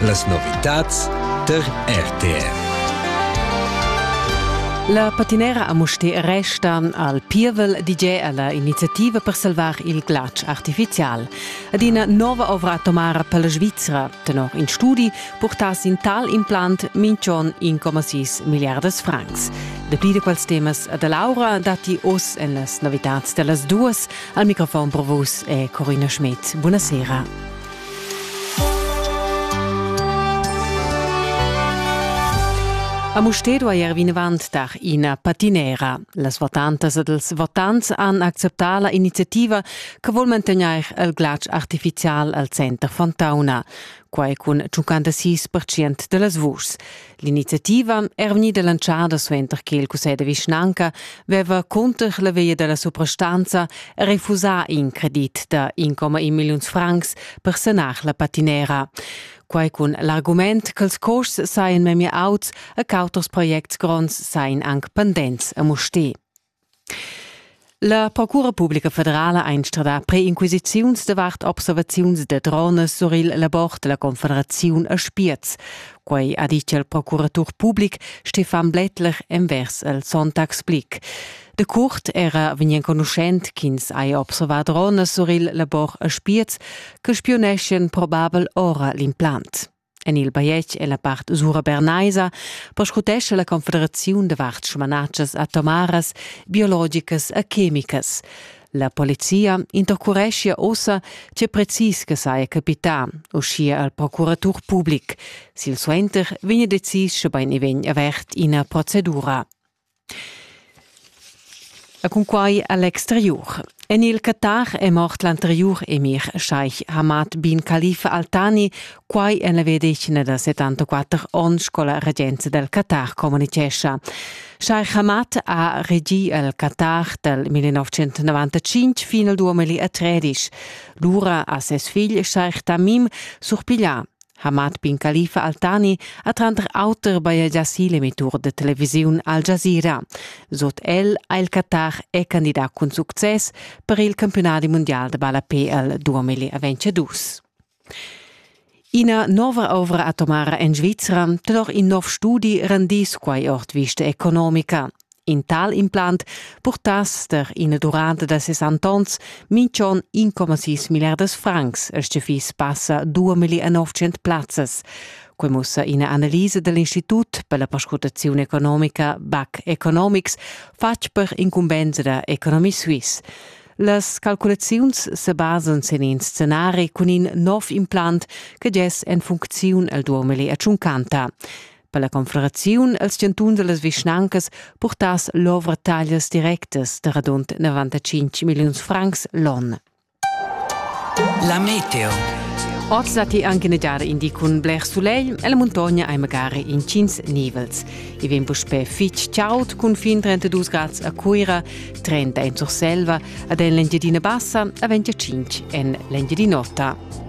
Las novitads tar RTR. La patinera a Mustér resta al pievel DJ alla iniziativa per salvar il glatsch artificial. Ad ina nova ovra atomara per la Svizzera, tenor in studi, portass in tal implant minchon 1,6 miliardas francs. Dapli da quels temas da Laura datti oz en las novitads da las duas, Al microfon pro vus è Corina Schmidt. Buonasera. A Musted duair vinavant dar ina patinera. Las votantas ed els votants han acceptà la iniziativa che vuol mantegnair il glatsch artificial al center Fontauna. Quai cun 56% da las vuschs. L'iniziativa era vegnida lanciada suenter che il cussegl de vischnanca veva cunter la via della suprastanza refusà in credit da 1,1 milliuns francs per sanar la patinera. Quai cun l'argument che els costs saien memia auts e che auters projects gronds saien anc pendents a Mustè. La Procura publica federala ha instradà preinquisiziuns davart observaziuns da dronas sur il labor della Confederaziun a Spiez. Quei ha ditg il procuratur public Stefan Blättler envers el Sonntagblick. De Kurt era vegn enconuschent ch'ins hai observà dronas sur il labor a Spiez che spioneschien probabel ora l'implant. En il bajetg è la part usura bernaisa perscrutescha la Confederaziun da vart smanatschas atomaras, biologicas e chemicas. La polizia intercureschia ossa tge precis che saja capità, uschia al procuratur public. Silsuenter vegn decis, sche bain vegn avert ina procedura. E cunquai a l'exteriur. En il Qatar è mort l'anteriur emir Sheikh Hamad bin Khalifa Al Thani, quai en la vedischina da 74 onns sco la regenza dal Qatar communitgescha. Sheikh Hamad ha regì il Qatar dal 1995 fin al 2013. Lura ha ses figl Sheikh Tamim surpiglià Hamad bin Khalifa Altani ha tranter auter bajegià si l'emitur da televisiun Al Jazeera. Sut el ha il Qatar è candidà cun success per il campiunadi mundial da ballapé al 2022. Ina nova ovra atomara en Svizra tenor in nov studi rendis quai ord vista economica. In tal implant purtass der ina durante da ses antons minchon 1,6 milliardas francs, als che fiss passa 2.900 plazzas. Quei mussa ina analisa dell'Institut per la perscrutazione economica BAC Economics, fatg per incumbensa da Economy Suisse. Las calculaziuns se basan sin in scenari cun in nov implant che gess en funcziun al 2050. per la confederaziun els chantuns e las vischnancas purtass l'ovra taglias directas da radund 95 milliuns francs l'on. La meteo. Oz datti anche negiare indi cun bler soleil e la montagna hai magari incins nivels. I vegn puspè fitg chaud cun fin 32 grad a Cuira, 30 en Surselva, ad en l'Engiadina Bassa a 25 en l'Engiadin'Ota.